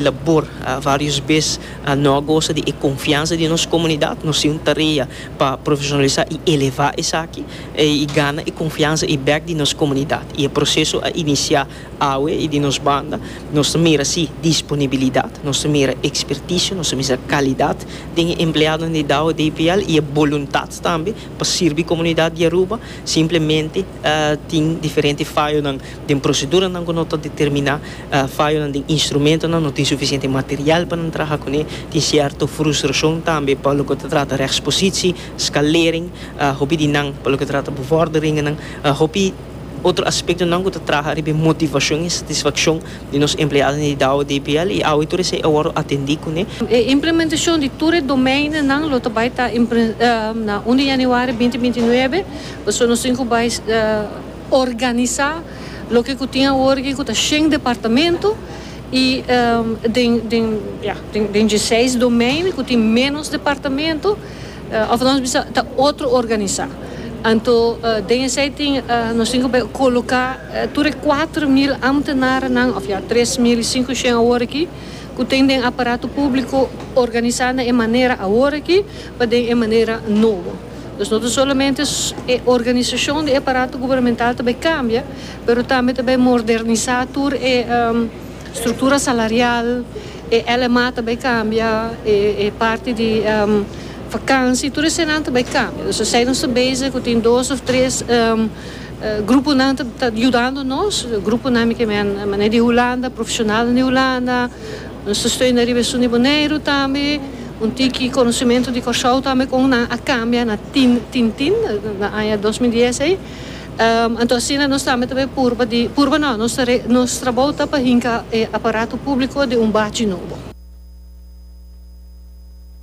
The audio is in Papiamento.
labor varios bes no a gosa di e confiansa di nos comunidad, nos tin un tarea pa profesionalisa y eleva esaki y gana e confiansa y bek di nos comunidad y e proceso a inicia awe y di nos banda nos ta mira si disponibilidad, nos ta mira experticio, nos ta misa calidad den e empleadonan di Dao DPL y e boluntad tambe pa sirbi comunidad di Aruba simplemente tin diferente fayonan. Den proseduranan ku no ta determiná fayonan den instrumentonan, no tin sufisiente material pa nan traha kuné, tin sierto frustrashon tambe pa loke ta trata rèkspositsi, skalering, hopi di nan pa loke ta trata bevòrderingennan, hopi otro aspektonan ku ta traha riba e motivashon i satisfakshon di nos empleadonan di Dow DPL i awe tur esei a wòrdu atendí kuné. E implementashon di tur e domeinonan lo ta bai ta na un di yanüari binti binti nuebe, pasobra nos tin ku bai. Organisá loke ku tin awor aki ku ta shen departamento i den ya den dieseis domein ku tin ménos departamento òf nos bisa ta otro organisá. Anto den esei tin nos tin ku por koloká tur e kuater mil ámtenarenan òf ya tres mil i sinku shen awor aki ku ten den aparato públiko organisá na e manera awor aki pa den e manera nobo. Nos no ta solamente e organisashon di e aparato gubernamental ta bay kambia, pero tambe ta bay mordernisá tur e struktura salarial, e LMA ta bay kambia, e parti di vakansi, tur eseinan ta bay kambia. Dus esei nos ta bezig ku tin dos òf tres gruponan ta yudando nos, gruponan mi ke men mané di Hulanda, profeshonalnan di Hulanda. Nos ta stoi na riba esun di Boneiru tambe. Un tiki konosementu di Kòrsou tambe kon nan a kambia na tin tintin na aña dos mil dies ei. Anto asina nos tambe ta bay purba di, purba no, nos ta nos trabou ta pa hinka e aparato públiko den un bachi nobo.